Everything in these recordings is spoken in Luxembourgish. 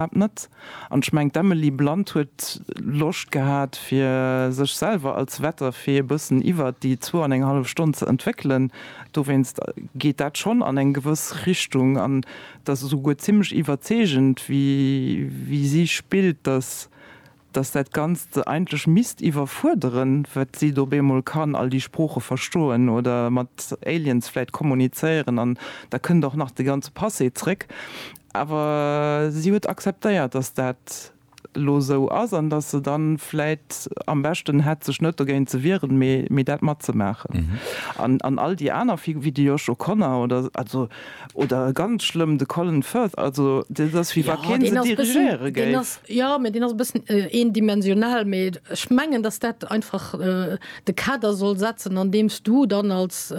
iwwerhaapt net. An ech mengen, d'Emily Blunt huet Loscht gehat, fir sech selwer als Wetterfee e bëssen iwwert déi zwou an eng hallef Stonn ze entwéckelen. Dowéinst geet dat schonn an eng gewëss Richtung. An et ass esouguer zimmlech iwwerzeegend, wéi si spillt, dass dass dat Ganzt se eigentlech misst iwwerfuerderen, wat si do op eemol kann, all déi Sprooche verstoen oder mat Aliens vläit kommunizéieren an da kënnt och nach de ganze Passé zréck. Awer si huet akzeptéiert, dass dat elo esou ass an dass se dann vläit am beschten hätt, sech net dogéint ze wieren, mee dat matzemaachen. An all déi aner, wéi de Josh O'Connor oder, also Oder ganz schlëmm de Colin Firth, also dat ass wéi wa kee se dirigéiere géif. Jo, mä deen ass e bëssen eendimensional. Mee ech mengen, datt dat einfach de Kader soll setzen, andeems du dann als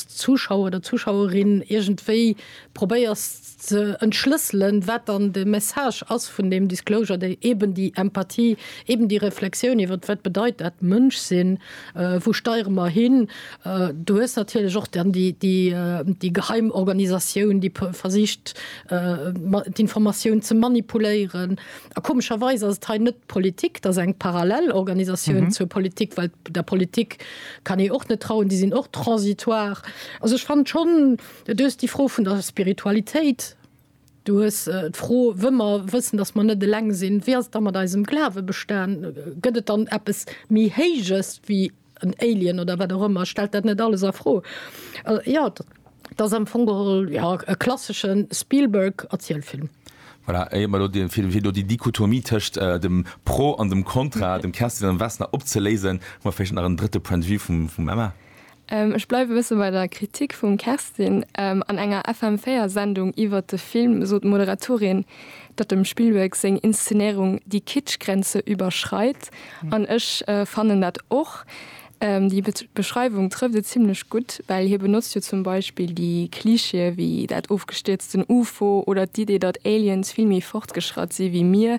Zuschauer oder Zuschauerin iergendwéi probéiers ze entschlësselen, wat dann de Message ass vun deem Disclosure, déi eben déi Empathie, eben déi Reflexioun iwwert wat bedeit dat Mënsch sinn, wou steiere mer hin, Du hues natierlech och dann déi geheim Organisatioun, déi versicht, d'Informatioun ze manipuléieren. A komescherweis ass et hei net d'Politik, et ass eng parallel Organisatioun zur Politik, well der Politik kann ee och net trauen, déi sinn och transitoire. Also ech fannen schonn, du hues déi Fro vun der Spiritualitéit, du hues d'Fro, wëll mer wëssen, datt mer net eleng sinn, wéi ass et da mat eisem Glawe bestan? Gëtt et dann eppes méi Héijes wéi. en Alien oder wat och ëmmer stellt dat net alles a Fro. Jo, et ass am Fong geholl, jo, e klassesche Spielberg-Erzielfilm. Voilà, éier mer elo dee Film, fir do déi Dichotomie tëscht dem Pro an dem Kontra, dem Kerstin an dem Vesna, opzeléisen, hu mer vläicht nach en drëtte Point de vue vum Emma. Ech bleiwe e bësse bei der Kritik vum Kerstin. An enger FM 4 Sendung iwwert de Film sot d'Moderatorin, datt dem Spielberg seng Inszenéirung déi Kitsch-Grenze iwwerschreit an ech fannen dat och. Déi Beschreiwung trëfft et zimlech gutt, well hie benotzt jo zum Beispill déi Klischeeë wéi dat ofgestierzten UFO oder d'Idee, datt Aliens vill méi fortgeschratt si wéi mir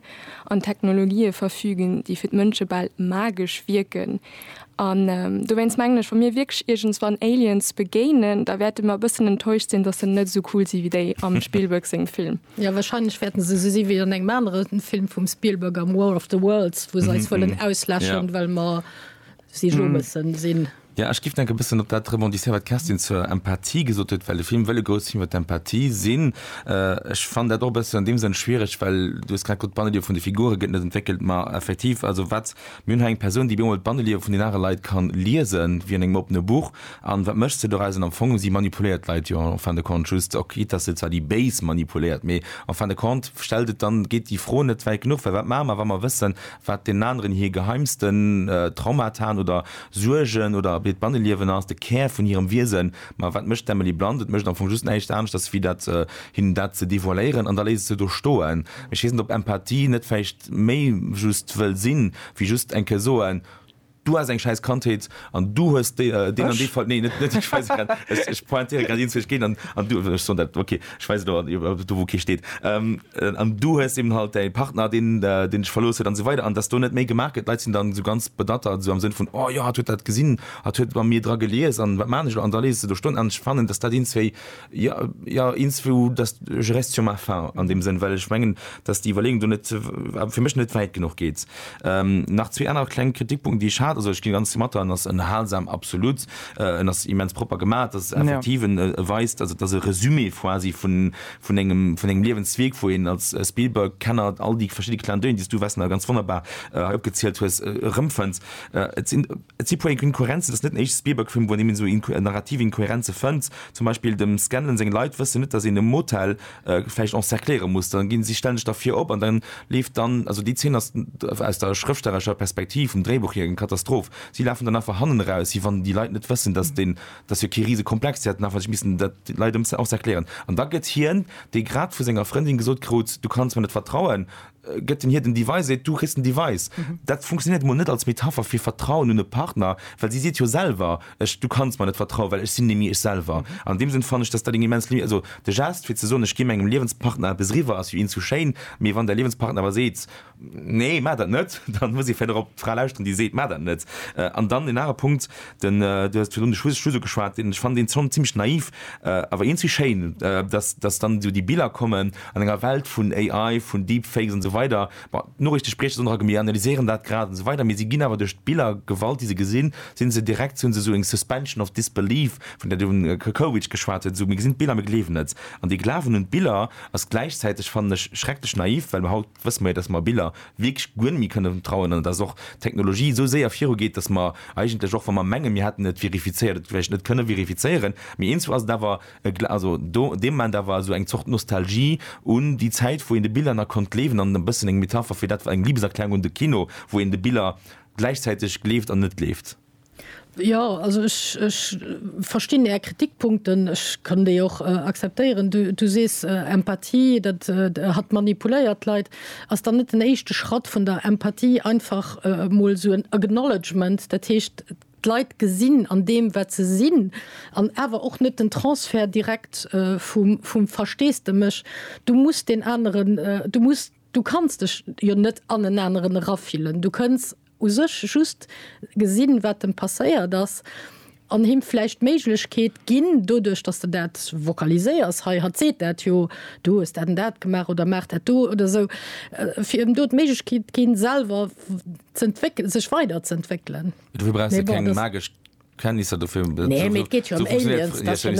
an Technologië verfügen, déi fir d'Mënsche bal magesch wierken. An dowéinst mengen ech, wa mir wierklech iergendswann Aliens begéinen, da wäerte mer e bëssen enttäuscht sinn, datt se net esou cool si wéi déi am Spielberg sengem Film. Jo, wahrscheinlech wäerten se esou si wéi an engem anere Film vum Spielberg am War of the Worlds, wou se eis wëllen auslëschen, ja. well mer si jo mëssen sinn. Ja, ech géif nach e bëssen op dat rebondisséieren, wat d'Kerstin zur Empathie gesot huet, well de Film wëll e grouss Film iwwer d'Empathie sinn. Ech fannen dat och e bëssen an deem Sënn schwiereg, well du hues grad gesot, d'Banneliewe vun de Figure gëtt net entwéckelt. Ma effektiv, also wat, mir hunn hei eng Persoun, déi op eemol d'Banneliewe vun den anere Leit ka liesen, wéi an engem oppene Buch, An wat mécht se dorausen? Am Fong hu si manipuléiert d'Leit jo en fin de compte just, ok quitt dass se zwar déi Béis manipuléiert, mee en fin de compte stellt et dann, geet déi Fro net wäit genuch, well wat maache mer wa mer wëssen wat deenen aneren hir geheimsten Traumaten oder Suergen oder hiert Banneliewen ass, de Kär vun hirem Wiesen, ma wat mécht d'Emily Blunt? Et mécht am Fong just näischt aneschters wéi dat, hinnen dat ze devoiléieren an da léisst et se do stoen. Ech weess net ob Empathie net vläicht méi just wëll sinn, wéi just eng Kéier soen, Du has eng schäiss Kandheet an du hues deen an deen Ech? Fall, nee, net, net ech, weise grad, ech, ech pointéiere grad eens, wou ech géint an, an du, ech soen dat, okay, ech weisen do, an, do wou kee steet, ähm, an du hues eben halt däi Partner, deen, deen dech verlooss huet an esou weider an dass do net méi gemaach gëtt. D'Leit sinn dann esou ganz bedattert, esou am Sënn vun, oh jo, hatt huet dat gesinn, hatt huet bei mir dra gelies an wat maan ech elo, an da leese se do Stonnen an. Ech fannen, dass dat eens wéi Ja, ja, ins vu dass je reste sur ma fin an dem Sënn, well ech mengen, dass déi Iwwerleeung do net fir mech net wäit genuch geet. Ähm, nach zwee aner kleng Kritikpunkten, déi ech hat, also ech gi ganz domatter, en ass ënnerhalsam, absolut, en ass immens propper gemaach, et ass effektiv, e weist, also et ass e Resumé quasi vun, vun engem, vun engem Liewensweg, wou een als Spielberg-Kenner all déi verschidde Clin d'oeil, déi s du, Wessner, ganz wonnerbar hei opgezielt hues, erëmfënns. Et sinn Et si puer Inkohärenzen, et ass net den éischte Spielberg-Film, wou een eben esou narrativ Inkohärenze fënnt. Zum Beispill dem Scanlon seng Leit wëssen net, datt een e Motel vläicht encercléiere muss. Da gi si stänneg derfir op an da leeft dann, also déi Zeen ass aus der schrëftstellerescher Perspektiv, vum Dréibuch hier, eng Katastroph. Si lafen dann einfach hannen eraus, si wann déi Leit net wëssen, datt deen, dat ass jo kee rise Komplex, si hätten einfach sech missen dat de Leit encercléieren. An da gëtt hien, dee grad vu senger Frëndin gesot krut, Du kanns mer net vertrauen, gëtt en hir den Device, seet, du kriss den Device. Dat funktionéiert emol net als Metapher fir Vertrauen un e Partner, well si seet jo selwer, ech, du kanns mer net vertrauen, well ech sinn nemmi ech selwer. An deem Sënn fannen ech, dass dat eng immens Limi, also de Geste fir ze soen, ech gi mengem Liewenspartner eppes eriwwer, ass jo eens sou schéin, mee wann däi Liewenspartner awer seet, nee, maach dat net, dann muss ee vläicht och op d'Fra lauschteren, déi seet, maach dat net. An dann en anere Punkt, Den, du hues virun de Schuss Schuss ugeschwat, deen ech fannen deen Song zimmlech naiv, awer eenzéi schéin, dass dass dann esou déi Biller kommen an enger Welt vun AI, vun Deepfakes an sou weider. Bon, d'Noriichte sprieche se ënner a mir analyséieren dat grad an sou weider, mee se ginn awer duerch d'Biller, d'Gewalt déi se gesinn, sinn se direkt, hunn se esou eng suspension of disbelief, vun där den Kerkowitsch geschwat huet, esou mir gesinn d'Biller, mir gleewen et. An dee Glawen un d'Biller ass gläichzäiteg, fannen ech, schrecklech naiv, well mir haut, wësse mer jo, dass mer Biller wierklech guer net méi kënne vertrauen an dass och d'Technologie esou séier virugeet, dass mer eigentlech, och wa mer menge mir hätten et verifizéiert, et vläicht net kënne verifizéieren. Mee eens ass et awer, e gla also do dee Moment awer esou eng Zort Nostalgie un déi Zäit, wou een de Biller nach konnt gleewen an e bëssen eng Metapher fir dat war eng Liebeserklärung un de Kino, wou een de Biller gläichzäiteg gleeft an net gleeft. Jo, also ech, ech verstinn Är Kritikpunkten. Ech kann déi och akzeptéieren. Du, du sees Empathie, dat hatt manipuléiert d'Leit. Ass dann net den éischte Schratt vun der Empathie einfach emol esou en Acknowledgement, dat heescht d'Leit gesinn an deem, wat se sinn, an awer och net den Transfert direkt vum, vum Versteesdemech, du muss deen aneren, du muss, du kanns dech jo net an en aneren erafillen, du kënns. u sech just gesinn, wat em passéiert ass, an him vläicht d'Méiglechkeet ginn, doduerch datt s de dat vocaliséiers, hei hatt seet dat jo, du hues dat an dat gemaach oder maach dat do oder esou, fir em do d'Méiglechkeet ginn, selwer z'entwéckelen, sech weiderz'entwéckelen. Dofir brauchs de keng magesch Kenntnisser dofir, esou funktioniert, nee, et geet jo ëm Aliens, dat jo net,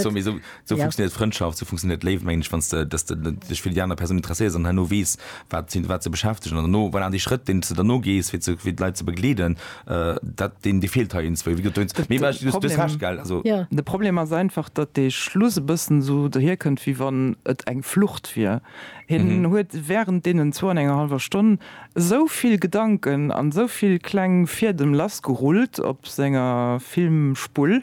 esou funktioniert Frëndschaft, esou funktioniert d'Léift mengen ech, wann s de dass de dech fir déi aner Persoun interesséiers an herno weess wat si wat se beschäftegen an derno voilà dee Schrëtt deen s de derno gees fir ze fir d'Leit ze begleeden dat deen dee feelt hei iergendwou wéi gesot dowéinst mee well ech dës Hasch gell also. De Problem ass einfach, datt dee Schluss e bëssen esou dohierkënnt wéi wann et eng Flucht wier. Hien huet wärend deenen zwou an enger hallwer Stonn Esou vill Gedanken an esou vill kleng Fiedem lassgerullt op senger Filmspull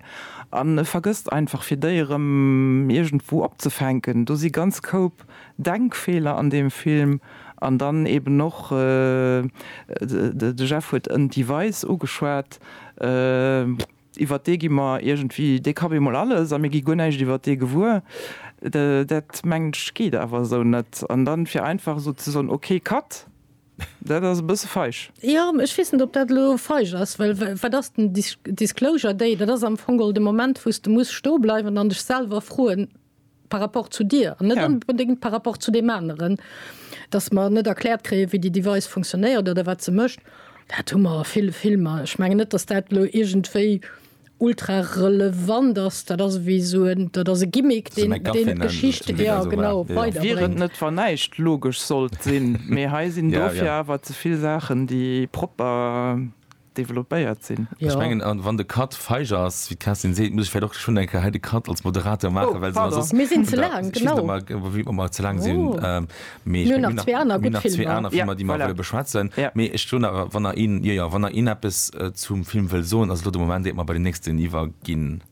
an e vergësst einfach fir déi erëm iergendwou opzefänken. Do si ganz Koup Denkfeeler an deem Film an dann eben och, de Jeff huet en Device ugeschwat, iwwert dee gi mer iergendwéi, dee ka bemol alles a mir gi guer näischt iwwert dee gewuer, dat mengen ech geet awer esou net. An dann fir einfach esou ze soen, ok, cut, dat ass e bësse feig. Jo, ech weess net, ob dat elo feig ass, well wat ass den Disclosure Day? Dat ass am Fong de Moment, wou s de muss stoe bleiwen an dech selwer froen, par rapport zu dir an net onbedéngt par rapport zu deem aneren, datt mer net erkläert kréien, wéi déi Device funktionéiert oder wat se mécht, dat hu mer a ville Filmer. Ech mengen net, datt dat elo iergendwéi ultra relevant ass. Dat ass ewéi esou en, dat ass e Gimmick, deen d'Geschicht, jo genau, weiderbréngt. Wier et net, wa näischt logesch sollt sinn. Mee hei sinn dofir awer ze vill Saachen, déi propper developpéiert sinn. Ech mengen, a wann de Cut feig ass, wéi d'Kerstin seet, muss ech vläicht och schonn eng Kéier hei de Cut als Moderateur maachen, well soss ass. Mir sinn ze laang, genau. Ech weess net, ob mir ëmmer ze laang sinn. Mee ech mengen, mir hunn nach zwee aner gutt Filmer. Mir hunn nach zwee aner Filmer, déi mer wëlle beschwätzen. Mee ech soen awer, wann nach een, jo, jo, wann nach een eppes zum Film wëll soen, ass elo de Moment, iert mer bei den nächsten iwwerginn.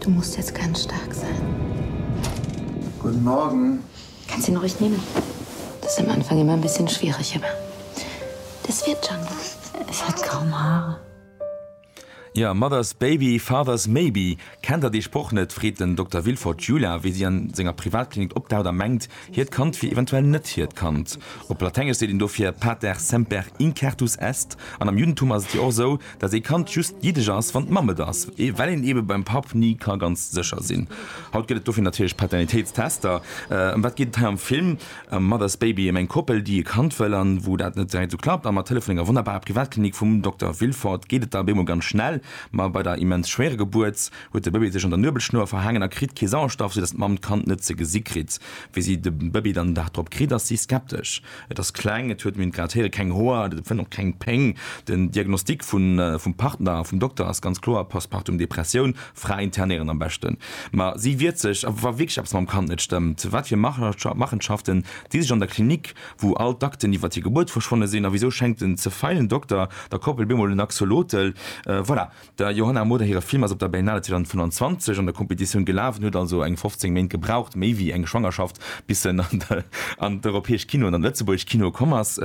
Du musst jetzt ganz stark sein. Guten Morgen. Kannst ihn ruhig nehmen. Das ist am Anfang immer ein bisschen schwierig, aber das wird schon. Es hat kaum Haare. Jo, Mother's Baby, Father's Maybe, Kennt der dee Sproch net? freet den Dokter Villefort d'Jula, wéi si an senger Privatklinik opdaucht a mengt, hiert Kand wier eventuell net hiert Kand. Op Latengesch seet een dofir pater semper incertus est, an am Juddentum ass et jo och esou, datt ee Kand just jiddesch ass, wann d'Mamm et ass, well een ebe beim Papp ni ka ganz sécher sinn. Haut gëtt et dofir natierlech Paternitéitstester. Ëm wat geet et hei am Film? A Mother's Baby, ëm eng Koppel, déi e Kand wëll an wou dat net direkt esou klappt. A mat Hëllef vun enger wonnerbarer Privatklinik vum Dokter Villefort geet et da bemol ganz schnell. Ma bei der immens schwéiere Gebuert huet de Bëbee sech an der Nuebelschnur verhaangen a kritt kee Sauerstoff, sou datt d'Mamm d'Kand net ze gesi kritt. Wéi si de Bëbee dann den Dag drop kritt, ass si skeptesch. Et ass kleng, et huet, mir hunn et grad héieren, keng Hoer, et fënnt och keng Péng. Den Diagnostic vum Partner, vum Dokter ass ganz kloer, Postpartum Depressioun, Fra internéieren am beschten. Ma si wiert sech, a wa wierklech eppes mam Kand net stëmmt, wat fir Machenschaften, déi sech an der Klinik wou all d'Akten iwwert hir Gebuert verschwonne sinn, a wisou schenkt den ze feilen Dokter der Koppel bemol en Axolotl? Voilà, der Johanna Moder hire Film ass op der Berlinale 2025 an der Kompetitioun gelaf, en huet also eng 15 Méint gebraucht, méi wéi eng Schwangerschaft, bis en an d'europäesch Kinoen an an d'lëtzebuergescht Kino komm ass.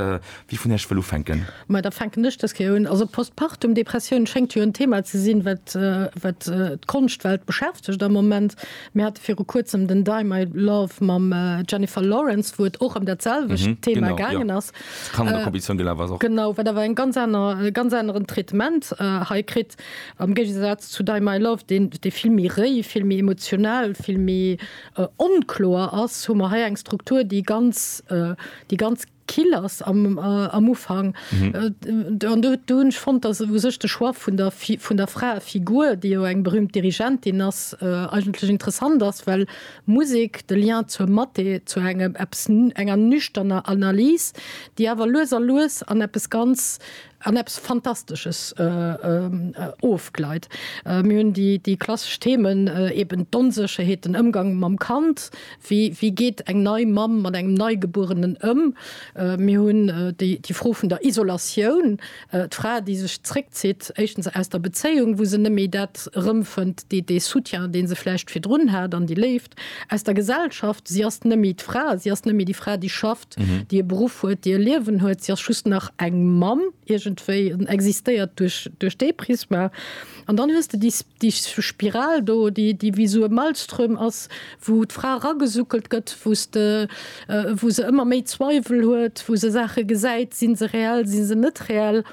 Wie vun iech wëll ufänken? Ma da fänken ech dës Kéier un. Also Postpartum Depressioun schéngt jo en Thema ze sinn, wat d'Konschtwelt beschäftegt am Moment. Mir hate viru kuerzem den Die My Love mam Jennifer Lawrence, wou et och ëm dat selwecht mhm, Thema genau, gaangen ja. ass. Kannerkompetition äh, gelaf ass och. Genau, wat awer eng ganz aner äh, ganz aneren Traitement äh, hei kritt am Géigesatz zu Die My Love, den de vill méi réi, vill méi emotional, vill méi äh, onkloer ass, hu mer hei eng Struktur, déi ganz äh, déi ganz kill ass am am Ufank an do do hunn ech fonnt, datt u sech de Choix vun der Fi vun der Fraefigur, déi jo eng berühmt Dirigentin ass, eigentlech interessant ass, well Musek, de Lien zur Mathé, zu engem eppes enger nüchterner Analys, déi awer lues a lues an eppes ganz an eppes Fantastesches ofgleit. Mir hunn déi klassesch Themen, eben d'Onsécherheet, den Ëmgang mam Kand, wéi geet eng nei Mamm mat engem Neigebuerenen ëm? Mir hunn déi Fro vun der Isolatioun, d'Fra, déi sech zréckzitt, éischtens aus der Bezéiung, wou se net méi dat erëmfënnt, dee Soutien, dee se vläicht virdrun hat, an déi Léift aus der Gesellschaft, si ass net méi d'Fra, si ass net méi déi Fra, déi schafft. déi e Beruff huet, déi e Liewen huet, si ass just nach eng Mamm iergendwéi an existéiert duerch, duerch dee Prisma. An dann hues de déi, déi Spiral do, déi, déi wéi esou e Maelström ass, wou d'Fra eragesuckelt gëtt, wou s de, wou se ëmmer méi Zweiwel huet, wou se Saache gesäit, si se reell, si se net reell?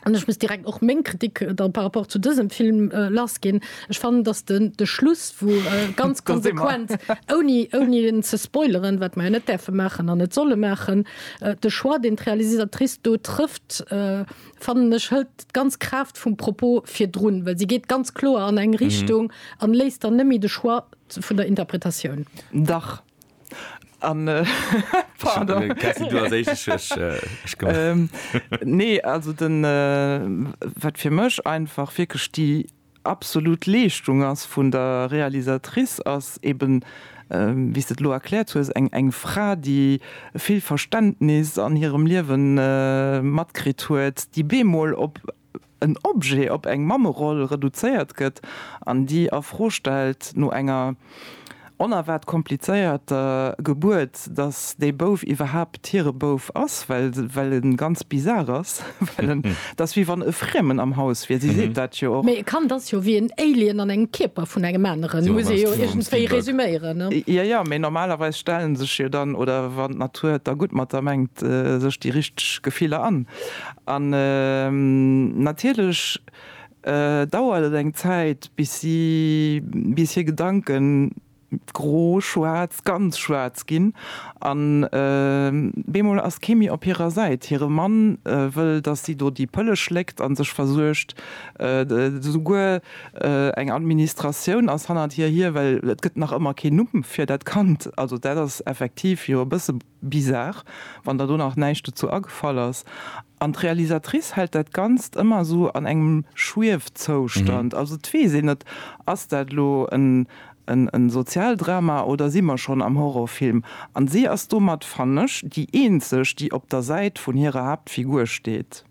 An ech muss direkt och meng Kritik dann par rapport zu dësem Film lass ginn. Ech fannen, datt den de Schluss, wou ganz konsequent, ouni ouni en ze spoileren, wat mer jo net däerfe maachen an net solle maachen, de Choix, deen d'Realisatrice do trëfft, fannen ech, hëlt d'ganz Kraaft vum Propos virdrun, well si geet ganz kloer an eng Richtung an léisst dann net méi de Choix vun der Interpretatioun. Dach. An pardon. Kerstin, du als éischt, ech, ech kommen. Nee, also den, wat fir mech einfach wierklech déi absolut Leeschtung ass vun der Realisatrice, ass eben, wéi s de et elo erkläert hues, eng, eng Fra, déi vill Verständnis an hirem Liewe matkritt huet, déi bemol op en Objet op eng Mammeroll reduzéiert gëtt an déi a Fro stellt, no enger onerwaart komplizéierter Gebuert, datt dee Bouf iwwerhaapt hire Bouf ass, well e ganz bizar ass, well en, et ass wéi wann e Friemen am Haus wier, si seet dat jo och. Mee e Kand ass jo wéi en Alien an engem Kierper vun engem aneren, muss ee jo iergendwéi resüméieren. Jo, jo, mee normalerweis stellen sech jo dann, oder wann d'Natur et da gutt mat der mengt, sech déi richteg Gefiller an. An natierlech dauert et eng Zäit, bis si, bis hir Gedanken gro, schwaarz, ganz schwaarz ginn. An bemol ass kee méi op hirer Säit. Hire Mann wëll, dass si do déi Pëlle schléckt a sech versuergt. Souguer eng Administratioun ass hannert hir hier, well et gëtt nach ëmmer keen Numm fir dat Kand. Also dat ass effektiv jo e bësse. Bizarre, wann der do nach näischt dozou agefall ass. An d'Realisatrice hält dat Ganzt ëmmer esou an engem Schwiefzoustand. Also et weess een net, ass dat elo e Sozialdrama oder si mer schonn am Horrorfilm? An si ass domat, fannen ech, déi eenzeg, déi op der Säit vun hirer Haaptfigur steet.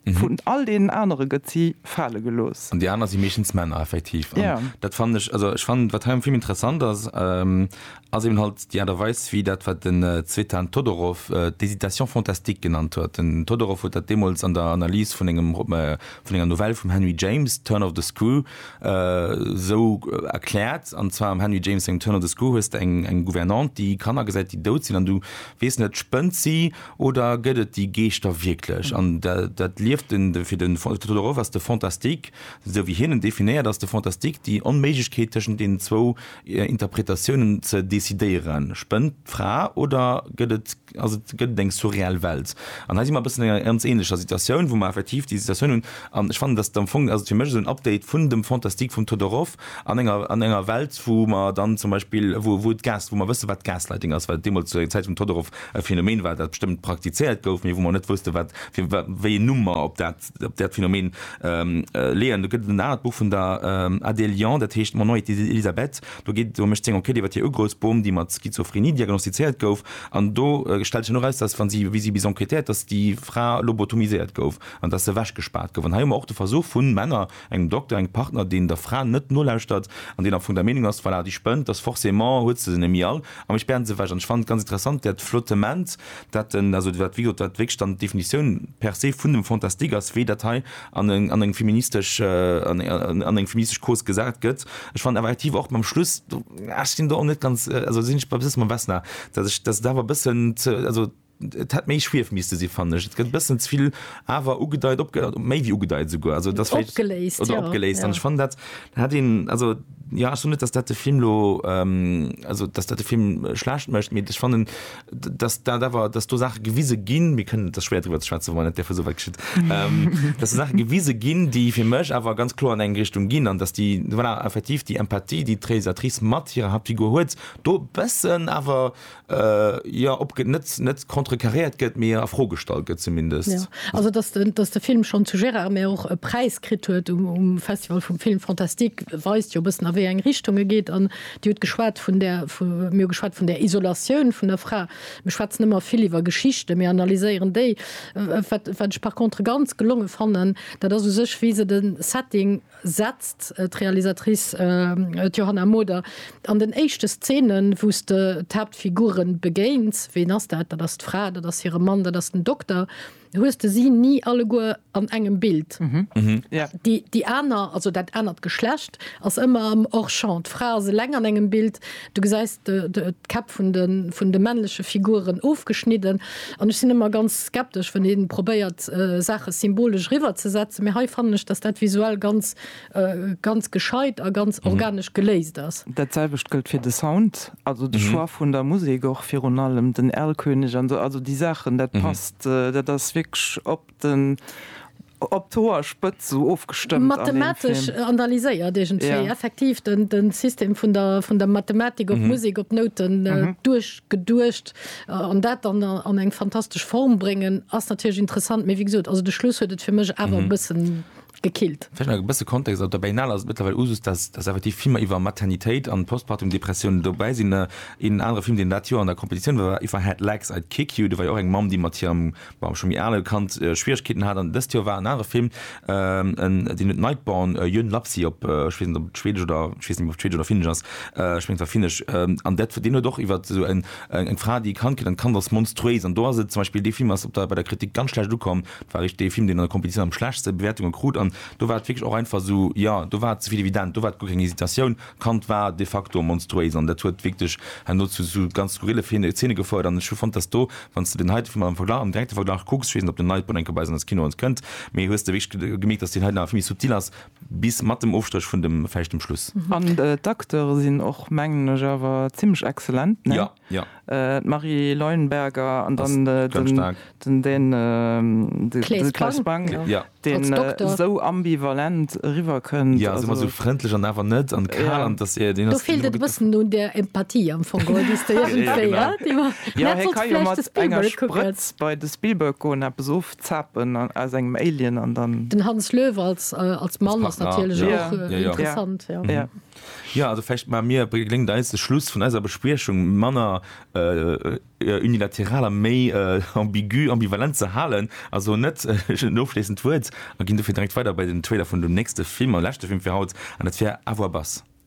Vun all deenen anere gëtt si fale gelooss. An déi aner si meeschtens Männer, effektiv. An dat fannen ech, also ech fannen, wat hei am Film interessant ass, ass eben halt déi Aart a Weis, wéi dat, wat den Tzvetan Todorov d'hésitation fantastique genannt huet. Den Todorov huet dat deemools an der Analys vun engem, vun enger Novell vum Henry James, Turn of the Screw, esou erkläert, an zwar am Henry James sengem Turn of the Screw hues de eng Gouvernante, déi Kanner gesäit, déi dout sinn, an du weess net, spënnt si Oder gëtt et déi Geeschter wierklech? An dat lieft den, fir den Theodor Roff ass de Fantastique, esou wéi hien en definéiert, ass de Fantastique déi Onméiglechkeet tëschent deenen zwou Interpretatiounen ze decidéieren. Spënnt d'Fra oder gëtt et, ass et, gëtt et eng surreal Welt? An hei si mer e bëssen an enger ganz ähnlecher Situatioun, wou mer effektiv déi Situatioun hunn. An ech fannen, dass et am Fong, also fir mech esou en Update vun dem Fantastique vum Theodor Roff, An enger, an enger Welt, wou mer dann zum Beispill, wou, wou d'Gas, wou mer wëssen, wat Gaslighting ass, wat deemools zur Zäit vum Todorov e Phänomen war, dat bestëmmt praktizéiert gouf, mee wou mer net wussten, wat fir, wat, wéi een Numm mer op dat, op dat Phänomen leeën. Do gëtt et en anert Buch vun der Adèle Liand, dat heescht Mon nom est Elisabeth. Do geet, do mécht seng Enquête iwwer hir Ugrëfsbom, déi mat Schizophrenie diagnostizéiert gouf. An do stellt sech dann och eraus, dass, wa si, wéi si bis enquêtéiert, dass déi Fra lobotomiséiert gouf an dass se ewechgespaart gouf. An hei hu mer och de Versuch vu Männer, Engem Dokter, engem Partner, deen der Fra net nolauschtert an deen am Fong der Meenung ass, voilà, déi spënnt, dass forcément huet se se nemmi all a mir spären se ewech. An ech fannen et ganz interessant, dat Flottement, dat den, also wat wéi gesot, wat wierklech dann d'Definitioun per se vun dem Fantastique ass, wéi dat hei an eng, an eng feministesch, an eng feministesch Cause gesat gëtt. Ech fannen awer effektiv och beim Schluss, ech sinn do och net ganz, also sinn ech e bësse mam Vesna, dass ech, dass et awer e bëssen ze, also. Et hätt méi Schwief misste sinn, fannen ech. Et gëtt e bëssen ze vill awer ugedeit, opge-, méi wéi ugedeit esouguer. Also, et ass vläicht. Opgeléist, Oder jo, opgeléist. An ech ja. fannen, dat hätt een, also, jo, ech soen net, dass dat de Film elo, also, dass dat de Film schlecht mécht, mee ech fannen, dass dat awer, dass do Saache gewise ginn, mir kënnen, et ass schwéier driwwer ze schwätzen, wann et derfir esou wäit geschitt, dass do Saache gewise ginn, déi fir mech awer ganz kloer an eng Richtung ginn an dass déi, voilà, effektiv déi Empathie, déi d'Réalisatrice mat hirer Haaptfigur huet, do e bëssen awer Jo, ob net contrecarréiert gëtt, mee a Fro gestallt gëtt zumindest. Jo, also dass de dass de Film schonn zu Gérard, mee och e Präis kritt huet um Festival vum Film fantastique, weist jo e bëssen a wéi eng Richtung e geet. An Dir hutt geschwat vun där, mir hu geschwat vun där Isolatioun vun der Fra. Mir schwätzen ëmmer vill iwwer Geschichten, mir analyséieren déi. Wat wat ech par contre ganz gelonge fannen, dat ass u sech wéi se de Setting, setzt d'Realisatrice Johanna Moder an den éischte Szenen, wou s de d'Haaptfigure begéins, ween ass dat? Dat ass d'Fra, dat ass hire Mann, dat ass den Dokter, hues de si ni alleguer an engem Bild. Déi aner, also dat anert Geschlecht, ass ëmmer am Hors-champ. D'Fra ass eleng an engem Bild. Du gesäis d'Käpp vun de männleche Figuren ofgeschnidden. An ech sinn ëmmer ganz skeptesch, wann ee probéiert, Saache symbolesch eriwwerzesetzen. Mee hei fannen ech, datt dat visuell ganz, ganz gescheit a ganz organesch geléist ass. Dat selwecht gëllt fir de Sound, also de Choix vun der Musek och. Virun allem den Erlkönig an esou, also déi Saachen, dat passt. Dat ass wierklech op Den op d'Hoer spëtz sou ofgestëmmt. Mathematesch analyséiert iergendwéi. Effektiv den System vun der vun der Mathematik op Musek, op Nouten duerchgeduecht an dat dann an eng fantastesch Form bréngen ass natierlech interessant. Mee wéi gesot, also de Schluss huet et fir mech awer e bëssen. gekillt. Vläicht nach e bësse Kontext, Op der Berlinale ass et mëttlerweil Usus, dass effektiv Filmer iwwer Maternitéit an Postpartum-Depressioun dobäi sinn. Een anere Film, deen dat Joer an der Competitioun war, war If I Had Legs I'd Kick You. Do war jo och eng Mamm, déi mat hirem, bon, scho méi ale Kand Schwieregkeeten hat. An dëst Joer war en anere Film, deen huet Nightborn, Yön Lapsi op, ech weess net, ob et schwedesch oder, ech weess net méi, ob et schwedesch oder finnesch ass, ech mengen, et war finnesch, an dat, deen huet och iwwer esou en Eng Fra, déi ee Kand kritt an d'Kand ass monstruéis. An do ass et zum Beispill, dee Film ass op der, bei der Kritik ganz schlecht ukomm. Et war richt dee Film, deen an der Competitioun am schlechtste Bewäertunge krut. An do war et wierklech och einfach esou, jo, do war et ze vill evident. Do war et guer keng Hesitatioun, d'Kand war de facto monstruéis. An dat huet wierklech herno zu esou ganz skurrille Zeene gefouert. An ech hu fonnt, dass do, wann s de deen heite Film am Verglach, am direkte Verglach kucks, ech weess net, ob den Nightborn eng Kéier bei eis an eis Kinoen kënnt, mee hues de wierklech gemierkt, dass deen hei nach vill méi subtil ass. Bis mat dem Ofstréch vun dem fäischtem Schluss. An d'Acteure sinn och, mengen ech, awer zimmlech excellent, ne? D'Marie Leuenberger an dann den Claes Bang, deen esou ambivalent eriwwerkënnt. Jo, ass ëmmer esou frëndlech an awer net, an kal an. Do feelt et e bëssen un der Empathie am Fong, oder déi s de iergendwéi, hä? Jo, hie ka jo mat enger Sprëtz bei de Spielberg goen, eppes Zapen aus engem Alien an dann. Den Hans Löw als als Mann ass natierlech och interessant. Jo, also vläicht maache mir, geléngt eis de Schluss vun eiser Bespriechung manner unilateral a méi ambigu, ambivalent ze halen a soen net en ofschléissend Wuert a ginn dofir direkt weider bei den Trailer vun dem nächste Film a leschte Film fir haut an dat wär Avoir Bass.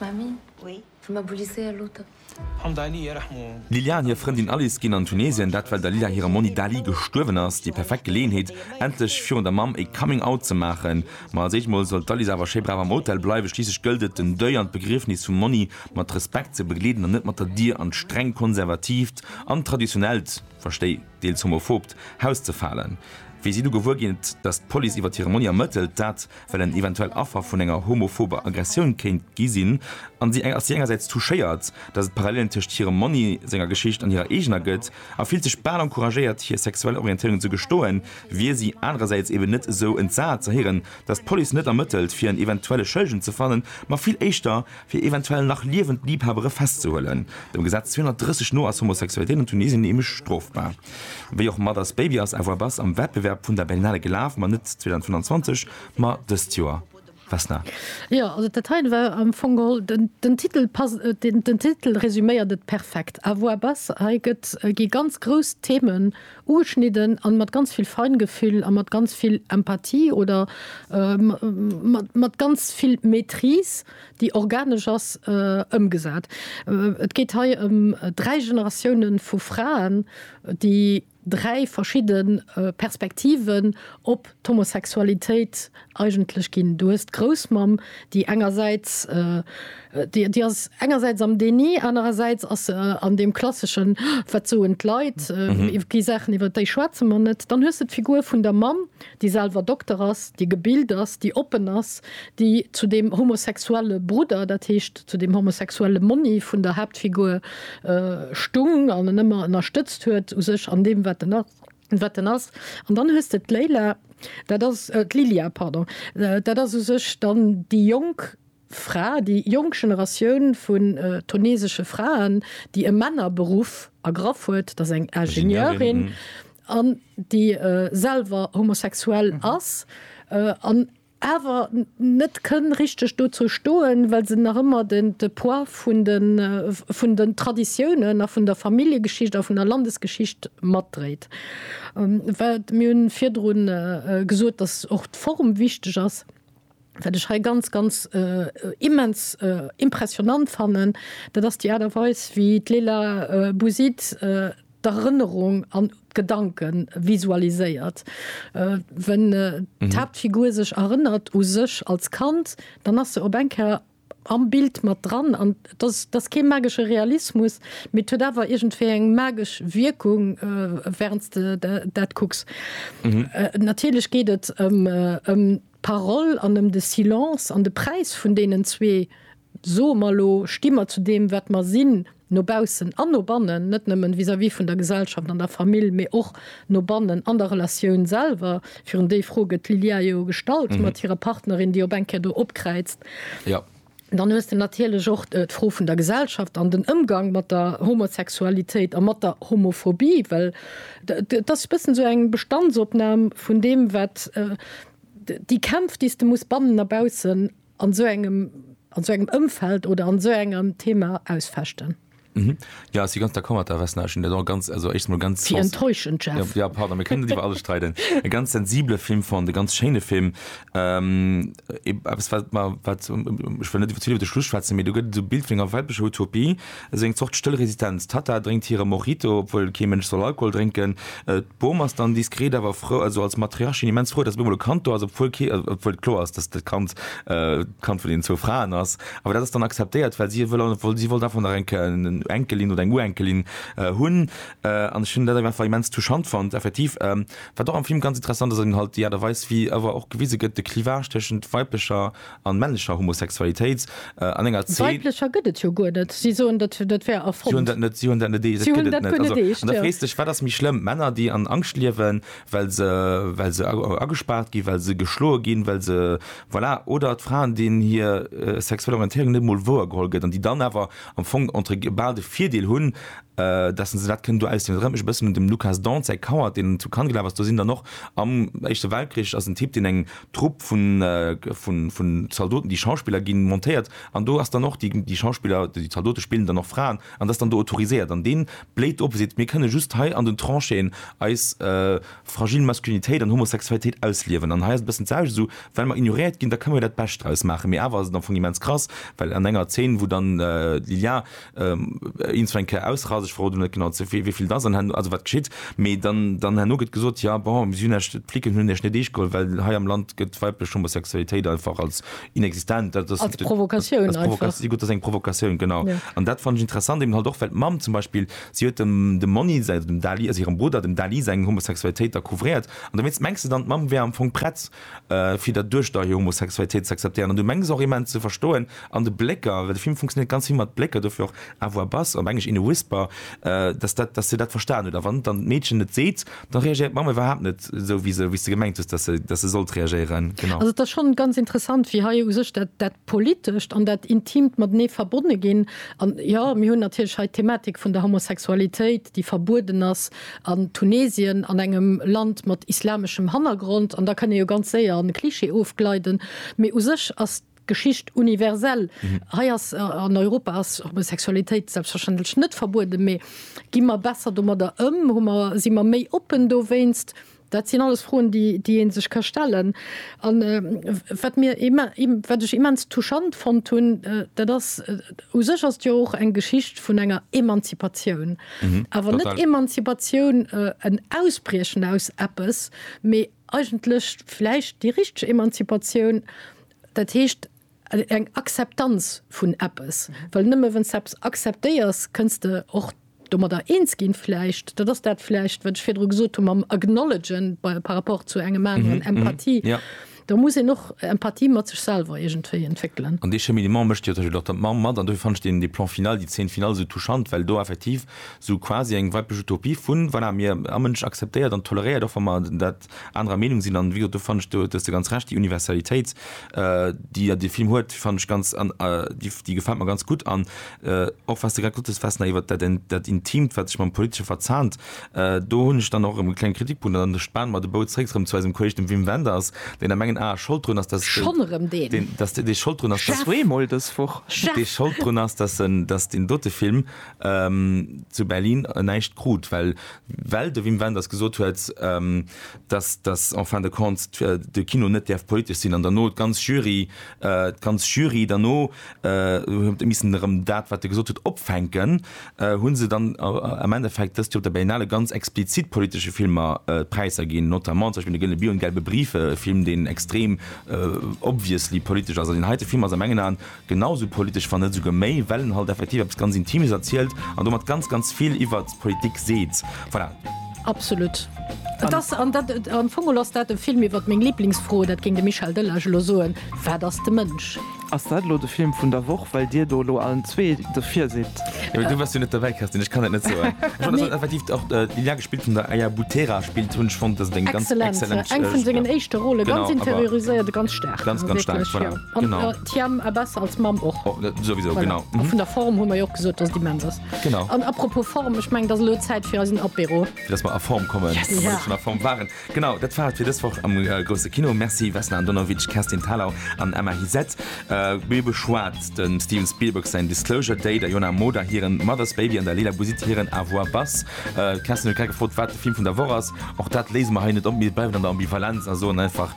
Mami, wëll mer Bulisé aloten? D'Liliane hir Frëndin Alice ginn an Tunesien, dat well der Lila hire Monni Dali gestuerwen ass. Déi perfekt Geleeënheet, endlech virun der Mamm ee Coming Out ze maachen. Ma als éischt mol soll d'Alice awer schéi brav am Hotel bleiwen, schliisslech gëllt et, den Deuil an d'Begriefnis vum Monni mat Respekt ze begleeden an net mat der Dier an d'streng konservatiivt an traditionellt, verstei deels homophobt, Haus ze falen. Wéi si du gewuer ginn, datt d'Police iwwer hire Monni ermëttelt, dat. well en eventuell Affer vun enger homophober Aggressioun kéint gi sinn, an si ass si engersäits touchéiert, datt et Parallelen tëscht hirem Monni senger Geschicht an hirer eegener gëtt, a fillt sech bal encouragéiert hir sexuell Orientéierung ze gestoen, wier si anerersäits eben net esou entsat ze héieren, datt d'Police net ermëttelt fir en eventuelle Schëllegen ze fannen, ma vill éischter, fir eventuell nach liewend Liebhabere festzehuelen. Dem Gesetz 230 no ass Homosexualitéit an Tunesien nämlech strofbar. Wéi och mat As Baby ass Avoir Bas am Wettbewerb vun der Berlinale gelaf, ma net 2025, ma dëst Joer. Vesna. Jo, also dat heien war am Fong geholl, den Titel passt, den Titel resuméiert et perfekt, Avoir Bas. Hei gëtt, gi ganz grouss Themen Ugeschnidden an mat ganz vill Feingefühl a mat ganz vill Empathie oder mat ganz vill Maîtrise, déi organesch ass, ëmgesat. Et geet hei ëm dräi Generatiounen vu Fraen, déi dräi verschidde Perspektiven op d'Homosexualitéit eigentlech ginn. Du hues d'Groussmamm, déi engersäits, déi ass engersäits am Déni, anerersäits ass se an deem klasseschen, wat soen d'Leit, iwwer déi Saachen, iwwer déi schwätze mer net. Dann hues de d'Figur vun der Mamm, déi selwer Dokter ass, déi gebilt ass, déi oppen ass, déi zu deem homosexuelle Brudder, dat heescht zu deem homosexuelle Monni vun der Haaptfigur stung an en ëmmer ënnerstëtzt huet u sech an deem, wat en ass. wat en ass. An dann hues de d'Leyla, dat ass, d'Lilia, pardon, dat ass u sech dann déi jonk Fra, déi jonk Generatioun vun tunesesche Fraen, déi e Männerberuff ergraff huet, dat ass eng Ingenieurin an déi selwer homosexuell ass an awer net kënn richteg dozou stoen, well se nach ëmmer den de Poids vun de vun den Traditiounen a vun der Familljegeschicht a vun der Landesgeschicht matdréit. Wat mir hunn virdru gesot, datt och d'Form wichteg ass, wat ech hei ganz, ganz immens impressionnant fannen, dat ass déi Aart a Weis wéi d'Leila Bouzid, d'Erënnerung an d'Gedanke visualiséiert. Wenn d'Haaptfigur sech erënnert u sech als Kand, dann ass se op eng Kéier am Bild mat dran. An et ass, et ass kee magesche Realismus, mee et huet awer iergendwéi eng magesch Wierkung, während s de dat kucks. Natierlech geet et ëm d'Parole an ëm de Silence an de Präis vun deenen zwee Soe mer elo, sti mer zu deem wat mer sinn, no baussen an no bannen, net nëmmen vis-à-vis vun der Gesellschaft an der Famill, mee och no bannen an der Relatioun selwer? Virun déi Fro gëtt d'Lilia jo gestallt mat hirer Partnerin, déi op eng Kéier do opkräizt. Dann hues de natierlech och d'Fro vun der Gesellschaft an den Ëmgang mat der Homosexualitéit a mat der Homophobie, well et ass e bëssen esou eng Bestandsopnam vun deem wat, déi Kämpf déi s de muss bannen a baussen an esou engem an esou engem Ëmfeld oder an esou engem Thema ausfechten. Jo, ech si ganz d'accord mat der Vesna. Ech hunn dat och ganz, also éischt emol ganz. Wéi enttäuschend, Jeff. Jo, pardon, mir kënnen net iwwer alles streiden. E ganz sensibele Film fonnt, e ganz schéine Film. Eppes wat mer, wat, ech wëll net iwwer, ze vill iwwer de Schluss schwätzen, mee do gëtt et esou e Bild vun enger weiblescher Utopie, Esou eng Zort stëll Resistenz. D'Tatta drénkt hire Mojito, obwuel kee Mënsch soll Alkohol drénken. D'Bom ass dann diskret awer frou, also als Matriarchin immens frou, datt op eemol e Kand do ass, obwuel kee, obwuel et kloer ass, datt dat Kand d'Kand vun deenen zwou Fraen ass. Awer dat ass dann akzeptéiert, well si wëll, obwuel si wollt einfach nach eng Kéier en Enkelin oder eng Urenkelin hunn. An ech hunn dat einfach immens touchant fonnt, effektiv. Wat och am Film ganz interessant ass, ass eben halt déi Aart a Weis, wéi awer och gewise gëtt, de Clivage tëschent weiblecher An männlecher Homosexualitéit an enger Zeen. Weiblecher gëtt et jo guer net. Si soen, dat wär erfonnt. Si hunn dat net. Si hunn dat net eescht. Si hunn dat guer net eescht. An da frees dech, wat ass méi schlëmm, Männer, déi an Angscht liewen, well se, well se agespaart ginn, well se geschloe ginn, well se, voilà, oder d'Fraen, deenen hir sexuell Orientéierung net emol wouer geholl gëtt an déi dann awer am Fong entre guil bal de Virdeel hunn, dass se dat kënnen do ausliwen. Dat erënnert mech e bëssen un dem Lukas Dont säi Coward, deen zu Cannes gelaf ass. Do sinn dann och am Éischte Weltkrich ass en Typ, deen eng Trupp vun Zaldoten, déi Schauspiller ginn montéiert, an do ass dann och, déi Schauspiller, déi Zaldote spillen dann och Fraen, an dat ass dann do autoriséiert, an dee bléit op a seet, mir kënne just hei an den Tranchéen eis fragil Maskulinitéit an Homosexualitéit ausliewen, an hei ass et e bëssen d'selwecht, esou well mer ignoréiert ginn, da kënne mer jo dat Bescht draus maachen, mee awer ass et am Fong immens krass, well an enger Zeen, wou dann d'Lilja Eens eng Kéier ausrasen, ech verroden net genau zu wéi vill dass an herno, also wat geschitt, mee dann, dann herno gëtt gesot, ja bon, si hunn Iech, d'Flicken hunn Iech net eescht geholl, well hei am Land gëtt d'weiblech Homosexualitéit einfach als inexistent, dat ass. Als Provokatioun einfach. Als Provokatioun, gutt, dat ass eng Provokatioun, genau. An dat fannt ech interessant, eben halt och, well d'Mamm zum Beispill, si huet dem, dem Monni säi, also dem Dali, also hirem Brudder, dem Dali seng Homosexualitéit da couvréiert, an dowéinst mengs de dann, d'Mamm wär am Fong prett, fir dat duerch der Homosexualitéit ze akzeptéieren an du mengs och immens ze verstoen an de Blécker, well de Film funktionéiert ganz vill mat Blécker, dofir och à voix basse, op Englesch in a whisper, dass dat, dass se dat verstan huet a wann dann d'Meedchen et seet, da reagéiert d'Mamm iwwerhaapt net esou wéi se, wéi s de gemengt hues, dass se, dass se sollt reagéieren. Genau. Also et ass schonn ganz interessant, wéi hei u sech dat, dat Politescht an dat Intimt matenee verbonne ginn. An jo, mir hunn natierlech hei d'Thematik vun der Homosexualitéit, déi verbueden ass, an Tunesien, an engem Land mat islameschem Hannergrond, an da kann ee jo ganz séier an e Klischee ofgleiden, mee u sech ass d'Geschicht universell. Hei ass, an Europa ass Homosexualitéit selbstverständlech net verbueden, mee gi mer besser domadder ëm, hu mer, si mer méi oppen dowéinst? Dat sinn alles Froen, déi ee sech ka stellen. A wat ech immens touchant fonnt hunn, dat ass, u sech ass et jo och eng Geschicht vun enger Emanzipatioun, awer net Emanzipatioun, en Ausbriechen aus eppes, mee eigentlech vläicht déi richteg Emanzipatioun, dat heescht, eng Akzeptanz vun eppes, well nëmme wann s de eppes akzeptéiers, kënns de och domadder eens ginn vläicht. Dat ass dat vläicht, wat ech virdru gesot hunn mam Acknowledgen bei par rapport zu engem aneren, Empathie. Do muss een och Empathie mat sech selwer iergendwéi entwéckelen. An dee Cheminement mécht jo zum Beispill och der d'Mamm mat. An dofir fannen ech deen, déi Plan final, déi Zeen final esou touchant, well do effektiv esou quasi eng weiblich Utopie vun, voilà, mir, a Mënsch akzeptéiert an toleréiert, och wa mer dat anerer Meenung sinn. An wéi gesot, do fannen ech, do hues de ganz Recht, déi Universalitéit, déi jo de Film huet, fannen ech ganz, déi gefält mer ganz gutt. An och wat s de grad gesot hues, Vesna, iwwert dat, dat Intimt, wat sech mam Politesche verzahnt, do hunn ech dann och erëm e klenge Kritikpunkt. An da spanen mer de Bou zréck erëm zu eisem Kolleg, dem Wim Wenders, deen a mengen Ae schold drun ass, dass, Schonn erëm deen? dass dee schold drun ass, dass. Zweemol dës Woch. Chef! Dee schold drun ass, dass en, dass deen dote Film zu Berlin näischt krut, well well de Wim Wenders gesot huet, dass, dass en fin de compte de Kino net däerf politesch sinn an derno d'ganz Jury, d'ganz Jury derno huet missen erëm dat, wat e gesot huet, opfänken, hu se dann am Endeffekt dëst Joer op der Berlinale ganz explizit politesche Filmer d'Präisser ginn, notamment zum Beispill De gëllene Bier un d'Gelbe Brief, e Film, deen extrem obviously politesch ass. An deen heite Film ass a mengen Aen genau esou politesch, wann net esouguer méi, well en halt effektiv eppes ganz Intimes erzielt an domat ganz, ganz vill iwwert d'Politik seet. Voilà. Absolut. Et ass, an dat, am Fong ass dat e Film iwwert meng Liblingsfro, dat géing de Michel Delage elo soen, Wat ass de Mënsch? Ass dat elo de Film vun der Woch, well Dir do elo allen zwee do virsitt? Jo, mee du waars jo net dobäi, Kerstin, ech kann dat net soen. Ech fand, dass dat effektiv och déi Lia gespillt hunn, der Aya Butera spillt hunn. Ech fonnt, dass et eng ganz excellent, eng vun sengen éischte Rolle, ganz interioriséiert, ganz staark, ganz, ganz staark, voilà, genau. Thiam a besser als Mamm och. Och net, souwisou, Voilà. genau. A Mhm. vun der Form hu mer jo och gesot, dass et immens ass. Genau. An apropos Form, ech meng, dass elo Zäit fir eisen Apéro. Fir dass mer a Form kommen, Yes. wann Ja. ech schon a Form waren. Genau, dat war et fir dës Woch am äh, Grousse Kino. Merci Vesna Andonovic, Kerstin Thalau an Emma Hizet. Äh, mir beschwat den Steven Spielberg sein Disclosure Day, der Jona Moda hiren Mother's Baby an der Leila Bouzid hiren Avoir Bass. Äh, Kerstin huet grad gefrot, wat de Film vun der Woch ass. Och dat léise mer hei net op, mir bleiwen an der Ambivalenz a soen einfach,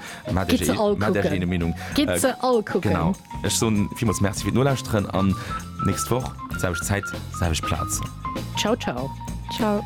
Gitt se all kucken. Ech soen villmools Merci fir d'Nolauschteren an nächst Woch selwecht Zäit, selwecht Plaz. Ciao ciao. Ciao.